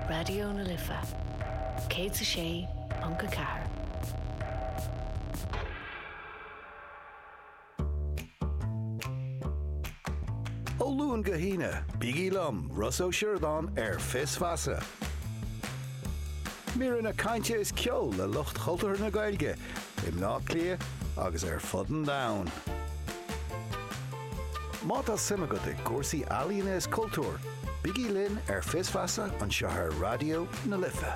Raidió na Life 106.4. Ó Luan go hAoine, bígí liom, Rossa Ó Sioradáin, ar Fios Feasa. Míreanna cainte is ceol le lucht chultúrtha na Gaeilge i mBleá Cliath agus ar fud an domhain. Má tá suim agat i gcúrsaí ealaíne is cultúir, bígí linn ar Fios Feasa anseo ar Raidió na Life.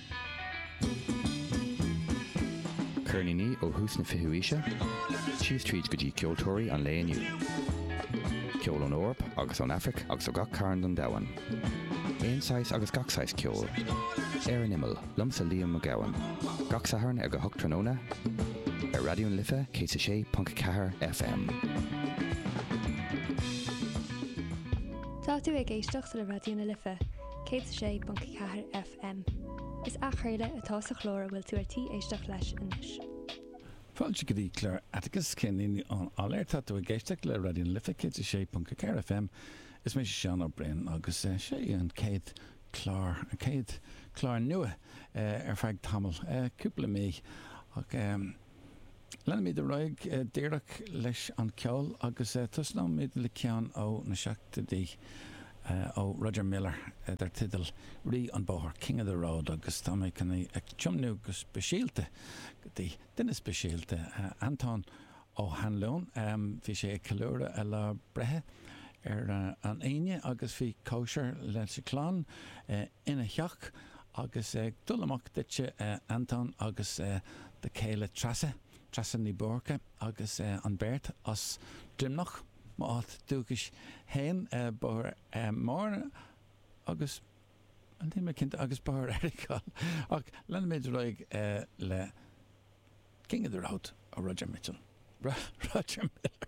Ceirníní ó thús na fichiú aoise síos tríd go dtí ceoltóirí an lae inniu. Ceol ón Eoraip agus ón Aifric agus ó gach cearn den domhan. Aon saghas agus gach saghas ceoil. Ar an Imeall, liomsa Liam Mac Gabhann. Gach Satharn ag a hocht tráthnóna ar Raidió na Life 106.4 FM. Tá tú ag éisteacht le Raidió na Life 106.4 FM. FM. Is athchraoladh atá sa chlár a bhfuil tú ar tí éisteacht leis anois. Fáilte go dtí clár Atticus, Ceirníní ón Áiléar. Tá tú ag éisteacht le Raidió na Life 106.4 FM. Is mise Seán Ó Briain agus seo í an chéad chlár, an chéad chlár nua ar feadh tamaill, cúpla mí. Leanfaimid ar aghaidh díreach leis an gceol agus tosnóimid le ceann ó na seachtóidí ó Roger Miller dar teideal 'Rí an Bhóthair', King of the Road, agus tá mé chun é a thiomnú go speisialta go dtí duine speisialta, Antóin Ó hAnluain. Bhí sé ag ceiliúradh a lá breithe ar an Aoine agus bhí cóisir leis an chlann ina theach Agus ag dul amach duitse, a Anton, agus do chéile Treasa, Treasa Ní Búrca, agus an bheirt as Droimneach, m'áit dúchais fhéin, Bóthar Mhúrn agus. níl mé cinnte, agus Bóthar Earagail, ach leanfaimid ar aghaidh le King of the Road, Roger Mitchell, Roger Miller.